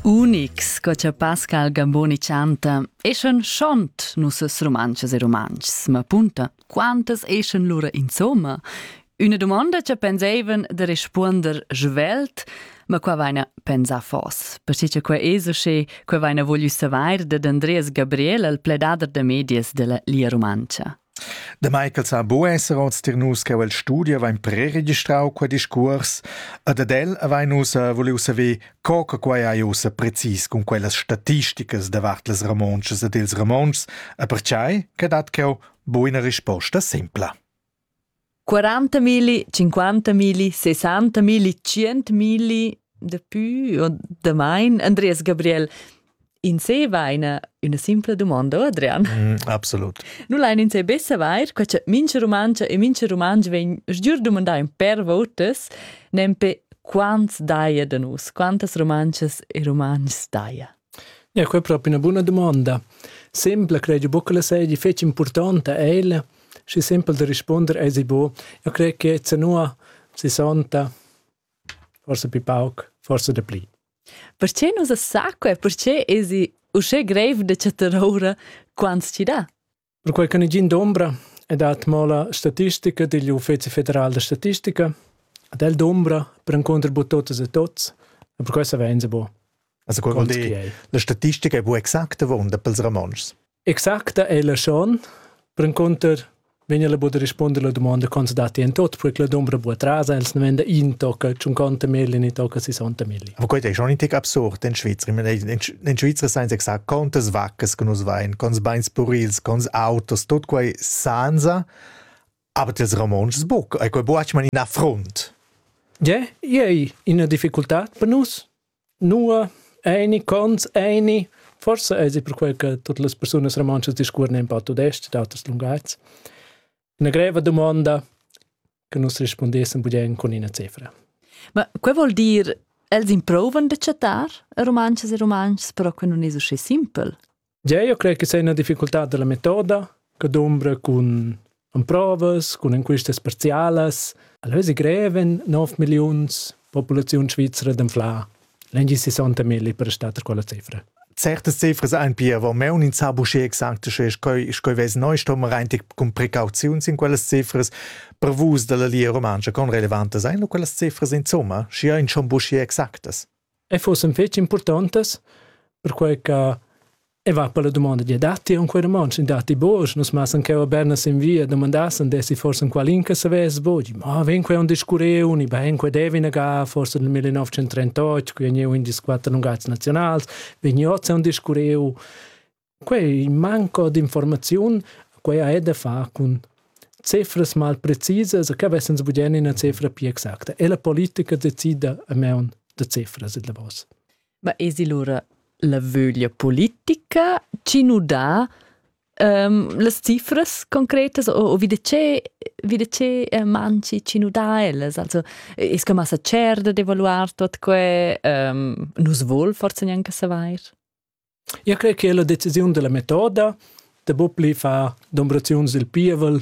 Unics, co cha Pascal Gamboni chanta, eschan schont nossas rumantschas e rumantschs, ma punta, quantas eschan lura insomma? Üna dumonda cha pensaivan da respuonder svelt, ma qua vaina pensà fos, perche cha quai es usché, quai vaina voglü savair dad Andreas Gabriel al pledader da medias da la Lia Rumantscha. Damai ch'els han buc esser oz tier nus cheu el studi havein preregistrau quei discuors ed ad el havein nus eh, vuliu saver co che quei ei ussa precis cun quellas statisticas davart las romontschas ed ils romontschs e pertgei che dat cheu buina risposta simpla. 40.000, 50.000, 60.000, 100.000, daplü o damain. Andreas Gabriel, in se vaina üna simpla dumonda, Adrian. Mm, absolut. Nu lain in se be savair, che cha mincha Rumancha e mincha Rumanch vegn sgiur dumandà in per votas, nempe quants daja da nus, quantas Rumanchas e Rumantschs daja. Ja, que è propi üna buna dumonda. Sempla credi buca ch'ella seigi fetg impurtonta ella, schi sempel da rispunder esi bu. Eu cret che zanua sessanta, forsa pi pauc, forsa dapli. Perche nu sa sa que? Perche esi uschè greiv da chattar oura quants chi dà? Perquai che negin dombra e dat mo la statistica digl Uffeci federal da statistica, ad el dombra perencunter bu totas e tots, e per questo vein se bu. Also qual vuol dire? La statistica è bu exacta vonda pels romanschs. Exacta è la schon, perencunter vegna la bu da risponder la domanda con se dati en tot, perché la dombra bu atrasa, els ne venda in tocca, ciun conta mille, ni tocca sessanta mille. Aber gut, ist schon ein Tick absurd in Schweizer. In Schweizer senza exact contas vaccas che nus vein, cons beins purils, cons autos, tot quei sanza, aber das Ramonschs buc, e quei buac man in affront. Yeah, yeah, ina difficultà per nus. Nua eine cons eine forse è per quel che tutte le persone romanche discorrono un po' tudest d'autres linguaggi. Una greva domanda che nus rispondessan budien con ina cifra. Ma quei vuol dir els improvan de chattar romances e romances, però que non es uscì simpel. Ja, io creo che sei una difficultà della metoda che dombra con con provas, con enquistes parzialas. Allora si greven 9 milions popolazione svizzera d'anflar L'engin 60 mil per star quella cifra. Certe Ziffers ein pia wo meun in sabusché exact sche schoi schoi wes neu stom reintig cun precauziuns in quellas Ziffers per vus dalla Lia Romancha con relevantes ein quellas Ziffers insomma schi ein schon busché exactas. E fossen fetg importantes perquei che E va per la domanda di datti un quei romanz in datti bosch nus massan che berna sin via domandassen desi forse un qualin che savess bogi ma ven quei un discureu ni ben quei devi naga forse nel 1938 qui ne un dis quattro lungazzi nazionals veniozza un discureu quei manco di informazion quei ha da fa con cifras mal precisas che wessens budien in una cifra più exacta e la politica decida a me un de cifras e de vos Ma esi lura la vöglia politica chi nu dà ehm las cifras concretas o o vi da che vi da che manchi chi nu dà ellas? Also es que massa tscherda d'evaluar tuot que? Ehm nu's voul forsa gnanca savair? Eu crai che la decisiun da la metoda da bopli far dombraziuns dil pievel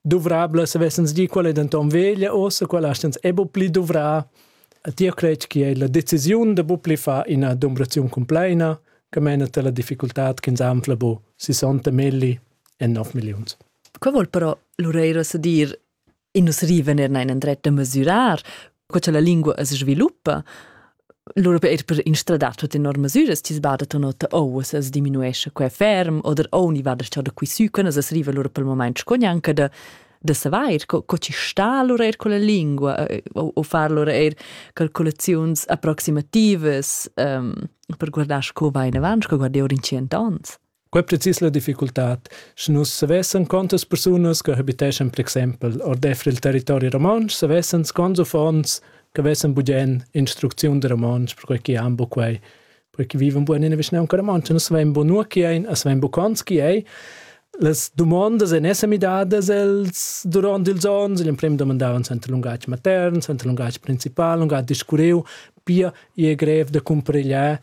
duvrabla se vessens di qual è denton veglia ossa qual astens è bu pli duvra a ti crec che è la decisiun de bu pli fa ina dumbraziun compleina che mena te la difficultad che zamfla bu 60 milli e 9 millions Qua vuol però Lureiro sa dir in nus riven er in dret da mesurar, co cha la lingua es sviluppa, Lura per er per instradar tutte enorme misures ti sbada tu nota o se diminuesce qua ferm oder o ni vada sta da qui su quando se arriva lura per il moment con anche da da savair co, co ci sta lura er con la lingua eh, o, o far lura er calcolaziuns approximativas um, per guardar co va in avanti, co guardi ora in cent ans. Quei precis la difficultad, sche nus savessan contas persunas che habiteschan per exempel ordeifer il territori romontsch, savessan scons uffants che vessen bugen instrucziun da romontsch, perquei che han bu quei, perquei che vivan bugen ina vischnaunca romontsch, nus savein bu nua chi ein, e savein bu cons chi ei. Las dumondas ein esser midadas els duront ils onns, igl emprem domandavan suenter lungatg matern, suenter lungatg principal, lungatg discurriu, pia ei grev da cumparegliar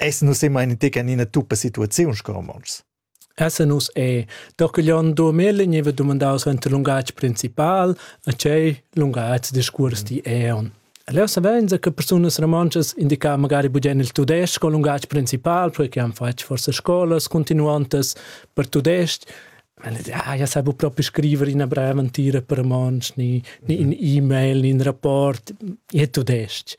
essan nus emma in tec en ina tuppa situaziuns co romontschs. Essan nus e Dorcaglion Durmel gneva dumandaus enta lungatg principal, a tgei lungatg discuors ti eon. Leu savein che persunas romontschas indicar magari bugen il tudestg col lungatg principal, perché han fatg forse scolas continuantas per tudestg, Ah, ja sabu proprio scrivere in brevantira per romansch, ni, ni in mhm. e-mail, ni in rapport, è tudestg.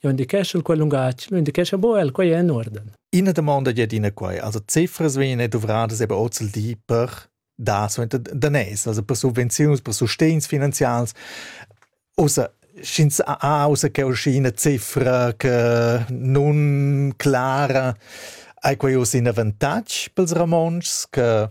Jo indichescha quel lungatg, lo indichescha bo el, quei è in uorden. Ina domanda è ina quai, also cifras vengono dovradas eben auch zu die per da so danès, also per subvenzioni, per sostegns finanzials. Außer sch'ins ha außer che una cifra che non clara, hai quei uss in avantatg pels Ramonschs che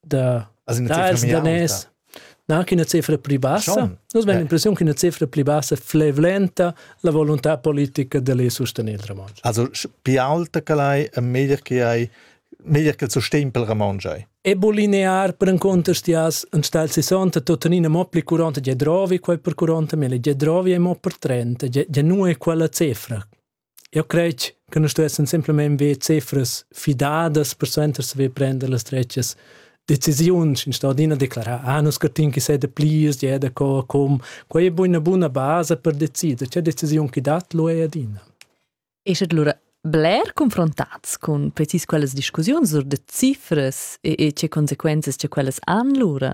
da dals danès na ch'ina cifra pli bassa. Nus vegn l'impressiun ch'ina cifra pli bassa flevlenta la volontà politica da lei sostenir il Ramonsch. Also più alta che l'hai e meglier che hai meglier che il sustegn per il Ramonsch hai. Ebolinear per un contestias un stal 60 tuttenina mo pli 40 ge drovi quai per 40 mille ge drovi è mo per 30 ge, ge nu è quella cifra Eu cret che nus stessan simplamaing be cifras fidadas persuenter saver prender las dretgas decisiuns instà adina declarar: «Ah, nus scurtin chi s'è daplirs, ja è d'accord, cum». Quai è buna buna basa per decider che decisiun chi dat lura è adina. E sche lura bler confrontats cun precis quellas discussiuns sur da cifras e, e tge consequenzas che quellas han lura?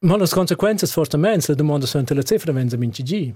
Ma las consequenzas fortamain, la dumonda suenter la cifra vegn da minchgi.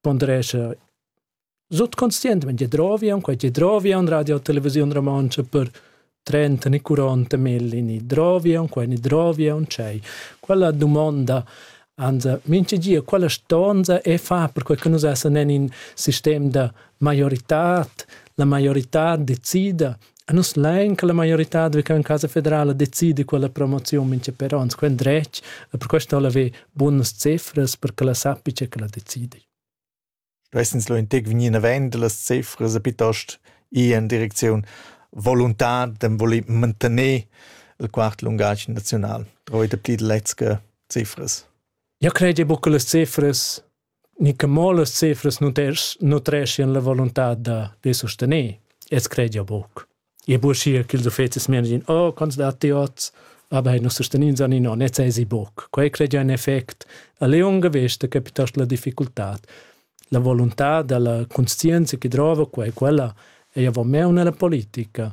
pondrescha sutconscientmaing tge drovia aunc quai tge drovia in Radio Televisiun Romontscha per trenta ne quaranta melli ni drovia aunc quai ne drovia aunc tschei. Quella dumonda ans mincha di a quella stonza e far perquai che nus essan in in sistem da maioritad, la maiorità decida A nus lain che la maioritad viva in Casa Federala decidi quella promoziun mincha per ons, quel dretg, e per questo ha'l aver bunas cifras per che la sappi che ch'ella decidi. Stessens lo integ vegnir navend las cifras e piuttost ir in direcziun volontad dem voler mantener il quart lungatg nazional. Troi de pli lezge cifras. Ja crede buca las cifras ni che mo las cifras nutreschian la voluntad da, da sustener. Ins credia buc. E buschia ch'ils uffecis menagin, oh, quants datti oz? Aber nus sustenins an non, jetzt esi buc. Quei credia ein effect a leunga vesta che piuttosto la difficultad. La volontà dalla conscienza che drova quei, quella, ei avon me una la politica,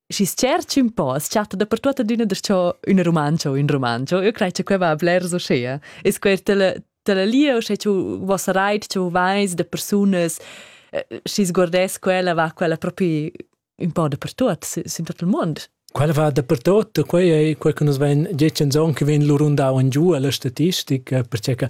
Schi tscherchi un po, s chatta dapertut adüna darcho üna rumantscha o ün rumantscha. Io craj cha quai va blers uschea. Es quer tela tela lia uschè ch'eu vos rait, ch'eu vais da persunas, schi sguardess quella, va quella propi ün po dapertut sün tot il muond. Quella va dapertut, quai ei quai che nus vein detg en zon che vegn lur rundau en giu alla statistica, perché che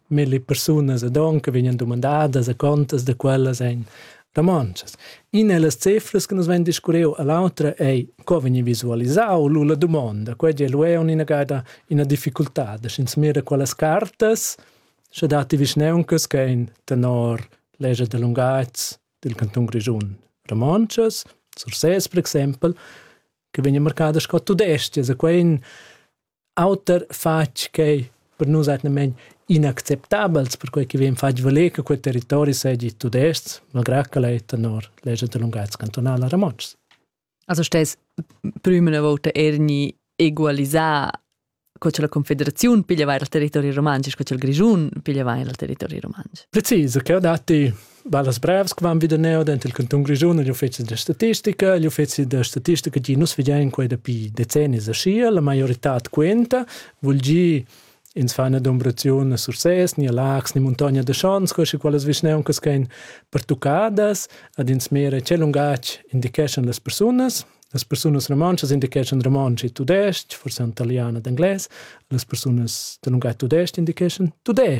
milli persunas ed onca vegnan dumandadas e contas da quellas ein romontschas. Ina ellas cefras che nus vegn discurreu a l'autra ei co vegni visualisau lu la dumonda. Quei è lu è ina gada ina difficultad, sch'ins mira quellas cartas, sche dati vischneuncas che ein tenor legia da lungatgs dil canton grischun romontschas, Sursès per exempel, che vegnan marcadas sco tudestgas e quei Auter fatg quei per nus atgnamein inacceptabels, perquei che vegn fatg valer che quei territori seigi tudestg, malgrà ch'el ei tenor legia da lungatgs cantunala romontschs. Also stess prüma volta ergni egualisà co che la Confederaziun pigliava il territori romansch, co che il Grischun pigliava il territori romansch. Precis, cheu datti Va las brevs che van vida neo dent il canton Grischun agl uffizi da statistica, agl uffizi da statistica gi nus vegein quei dapi decennis aschia, la maioritad quenta, vul gi ins fa una dombraziun a Sursès, ni a Lax, ni Montagna de Schons, quasi quelles vischneuncas che ein pertucadas, ad ins mera ce lungatg indicheschan las persunas, las persunas romontschas indicheschan romontsch e tudestg, forse en italiano ed englais, las persunas de lungatg tudestg indicheschan tudestg.